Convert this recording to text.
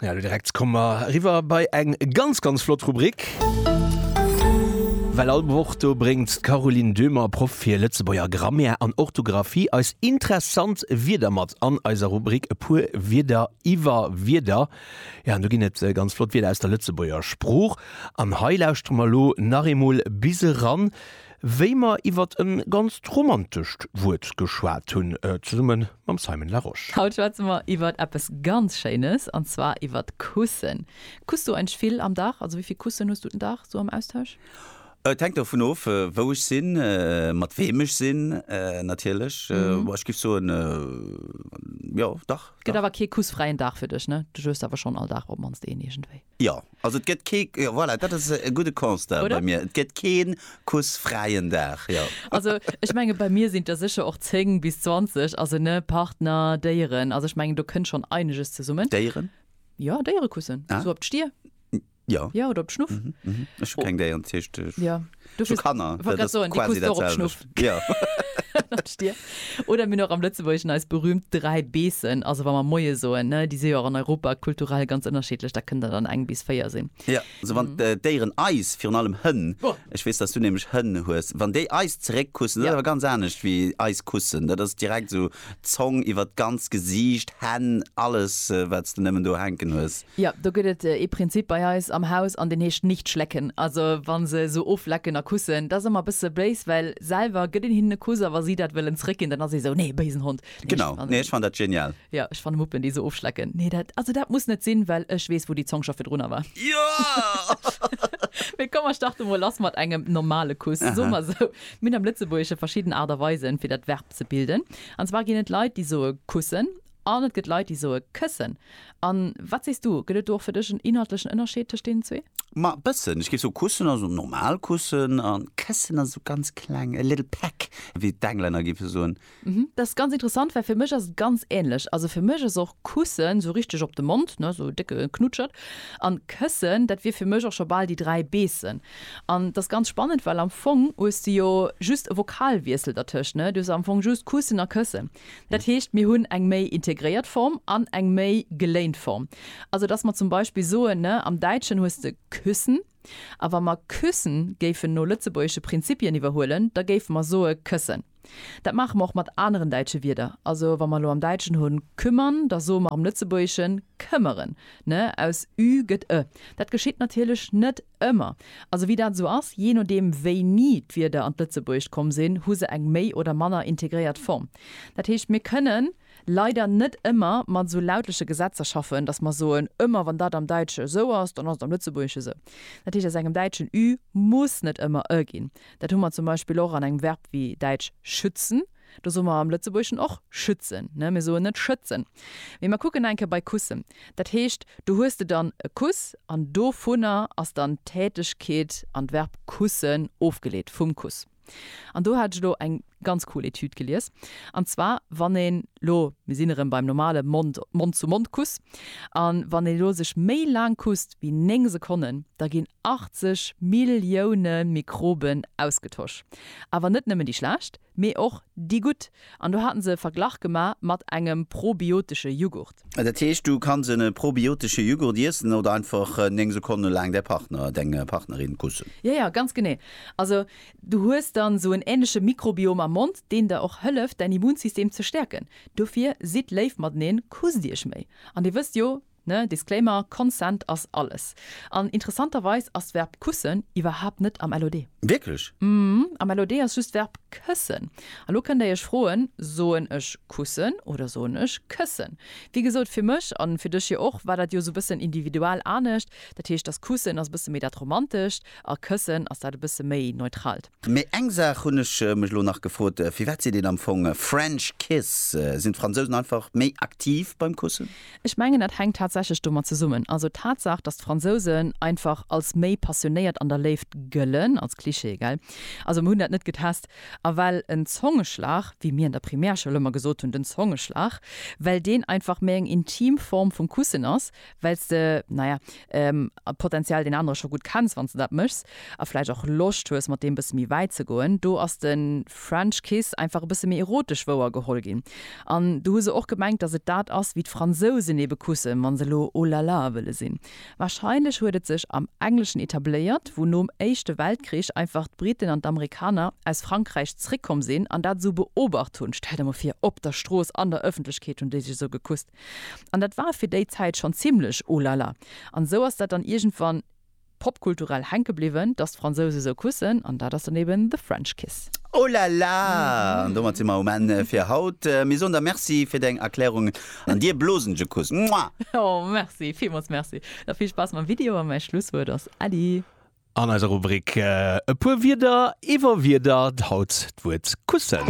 Ja, du direkt kommen wir riwwer bei eng ganz ganz flott Rubrik. Well all Woch do bréngt d'Caroline Döhmer, Proff fir Lëtzebuerger Grammaire an Orthografie, eis interessant Wierder mat an eiser Rubrik E puer Wierder iwwer Wierder. Ja, an do ginn et ganz flott Wierder aus der Lëtzebuerger Sprooch. An hei lauschtere mer elo nach eemol bis eran. wéi mer iwwert en ganzt romantescht Wuert geschwat hunn, zesumme mam Simon Larosche. Haut schwätze mer iwwert eppes ganz Schéines, an zwar iwwert Kussen. Kuss du eigentlech vill am Dag? Also wéi vill Kussen hues du den Dag sou am Austausch? Et hänkt dovun of, wou ech sinn, mat weem ech sinn natierlech. Bon, ech giff soen, jo, dach. Gëtt awer kee kussfräien Dag fir dech, ne? Du josst awer schonn all Dag op d'mannst een iergendwéi. Jo, also et gëtt kee, jo voilà, dat ass e gudde Constat bei mir, et gëtt kee kussfräien Dag, jo. Also ech menge bei mir sinn et der sécher och 10 bis 20, also ne, Partner, Déieren, also ech mengen do kënnt schonn eineges zesummen. Déieren? Jo, Déierekussen, esou op d'Stier. Jo. Jo, oder op d'Schnuff. Ech hu keng Déieren, dat heescht ech. Jo. Zu Kanner, dat ass quasi dat selwecht. Oder mir hunn och am Lëtzebuergeschen eis berüümt dräi Beessen, also wa mer Moie soen, ne, déi si jo och an Europa kulturell ganz ënnerschiddlech, da kënnt der dann eng bis véier sinn. Jo, also wann d'Déieren eis, virun allem Hënn, ech weess, dass du nämlech Hënn hues, wann déi eis zeréckkussen, dat ass awer ganz anescht wéi eis kussen, dat ass direkt esou. Zong iwwer d'ganzt Gesiicht, Hänn, alles wats de nemmen do hänken hues. Jo, do gëtt et ee Prinzip bei eis am Haus an deen heescht nicht schlecken. Also wa se esou oflecken a kussen, dat ass ëmmer e bësse béis, well selwer gëtt een hinnen e Kuss a wa si dat wëllen zréckginn, dann ass ee esou, nee, béisen Hond. Genau, nee ech fannen dat genial. Jo, ech fanne Muppen déi esou ofschlecken, nee dat, also dat muss net sinn, well ech weess wou déi Zong scho virdrunner war. Mee komm mer starte mol lass mat engem normale Kuss. Soe mer esou, mir hunn am Lëtzebuergesche verschidden Aart a Weisen fir dat Verb Ze bilden. An zwar ginn et Leit, déi soe kussen an et gëtt Leit, déi soe këssen. A wat sees du, gëtt et do och fir dech en inhaltlechen Ënnerscheed tëscht deenen zwee? Ma e bëssen. Ech géif soen, kussen ass esou normal kussen a këssen ass esou ganz kleng, a little peck, wéi d'Englänner géife soen. Mhm, dat ass ganz interessant, well fir mech ass et ganz änlech. Also fir mech ass och kussen esou richteg op de Mond, ne, esou e décke Knutschert. An këssen, dat wier fir mech och scho bal déi dräi beessen. An et ass ganz spannend, well am Fong hues de jo just e Vokalwiessel dertëscht, ne? Du hues am Fong just kussen a këssen. Dat heescht, mir hunn eng méi integréiert Form an eng méi geléint Form. Also dass mer zum Beispill soen, ne, am Däitschen hues de küssen, a wa mer küssen géifen no lëtzebuergesche Prinzipien iwwerhuelen, da géife mer soe këssen. Dat maache mer och mat aneren däitsche Wierder. Also wa mer elo am Däitschen hunn kümmern, da soe mer am Lëtzebuergeschen këmmeren, ne? Aus ü gëtt e. Dat geschitt natierlech net Ëmmer. Also wéi dat esou ass, jee nodeem wéini d'Wierder an d'Lëtzebuergescht komm sinn, hu se eng méi oder manner integréiert Form. Dat heescht, mir kënnen leider net ëmmer mat esou lautleche Gesetzer schaffen, datt mer soen, ëmmer wann dat am Däitsche esou ass, dann ass et am Lëtzebuergesche esou. Dat heescht, aus engem Däitschen ü muss net ëmmer ë ginn. Dat hu mer zum Beispill och an engem Verb wéi däitsch schützen. Do soe mer am Lëtzebuergeschen och schützen, ne? Mir soen net schëtzen. Mee mer kucken eng Kéier bei kussen. Dat heescht, do hues de dann e Kuss an dovunner ass dann d'Tätegkeet an d'Verb kussen ofgeleet, vum Kuss. An do hat ech elo eng ganz cool Etüd gelies. An zwar, wann een elo, mir sinn erëm beim normale Mond, Mond-zu-Mond-Kuss, a wann een elo sech méi laang kusst wéi néng Sekonnen, da ginn 80 Millioune Mikroben ausgetosch. Awer net nëmmen déi schlecht, Mee och déi gutt. An do haten se e Verglach gema mat engem probiotesche Jughurt. Dat heescht, du kanns en probiotesche Jughurt iessen oder einfach 9 Sekonne laang däi Partner, deng Partnerin kussen. Jo, jo, ganz genee. Also du hues dann esou en ähnleche Mikrobiom am Mond, deen der och hëlleft, däin Immunsystem ze stäerken. Dofir sidd léif mateneen, kusst iech méi. An dir wësst jo, Ne, Disclaimer, Consent ass alles. An interessanterweis ass d'Verb kussen iwwerhaapt net am LOD. Wierklech? Mhm, am LOD ass just d'Verb këssen. A lo kënnt Dir Iech froen, Soen ech kussen oder soen ech këssen? Wéi gesot, fir mech, an fir dech jo och, war dat jo esou e bëssen individual anescht. Dat heescht, dass kussen ass e bësse méi dat Romantescht a këssen ass dat e bësse méi Neutralt. Mee eng Saach hunn ech mech elo nach gefrot, Firwat seet een am Fong French Kiss? Sinn d'Fransousen einfach méi aktiv beim Kussen? Ech mengen dat hänkt tatsächlech domat zesummen. Also d'Tatsaach, datt d'Fransousen einfach als méi passionéiert an der Léift gëllen, als Klischee, gell? Also mer hunn dat net getest. A well en Zongeschlag, wéi mir an der Primärschoul ëmmer gesot hunn, den Zongeschlag, well deen einfach méi eng intim Form vum Kussen ass, well s de, naja, potentiell deen anere scho gutt kenns, wann s de dat méchs, a vläicht och Loscht hues, mat deem bësse méi wäit ze goen. Do ass de French Kiss einfach e bësse méi erotesch wouergeholl ginn. An do hu se och gemengt, datt et dat ass, wéi d'Fransousen ebe kussen, wa se elo Oh la la wëlle sinn. Warscheinlech huet et sech am Engleschen etabléiert, wou nom Éischte Weltkrich einfach d'Briten an d'Amerikaner aus Frankräich zréckkomm sinn an dat esou beobacht hunn, Stell der mol vir, op der Strooss, an der Ëffentlechkeet hunn déi sech esou gekusst. An dat war fir déi Zäit schonn zimlech oh la la. An esou ass dat dann iergendwann popkulturell hänke bliwwen, dass d'Fransouse esou kussen. An dat ass dann eben The French Kiss. Oh la la! An domat si mer um Enn fir haut. Mir soen der Merci fir deng Erklärungen an dir blosen ech e Kuss. Mua! Oh, merci, villmools merci. Da vill Spaass mam Video a mäi Schlusswuert ass Äddi. An eiser Rubrik E puer Wierder iwwer Wierder haut d'Wuert kussen.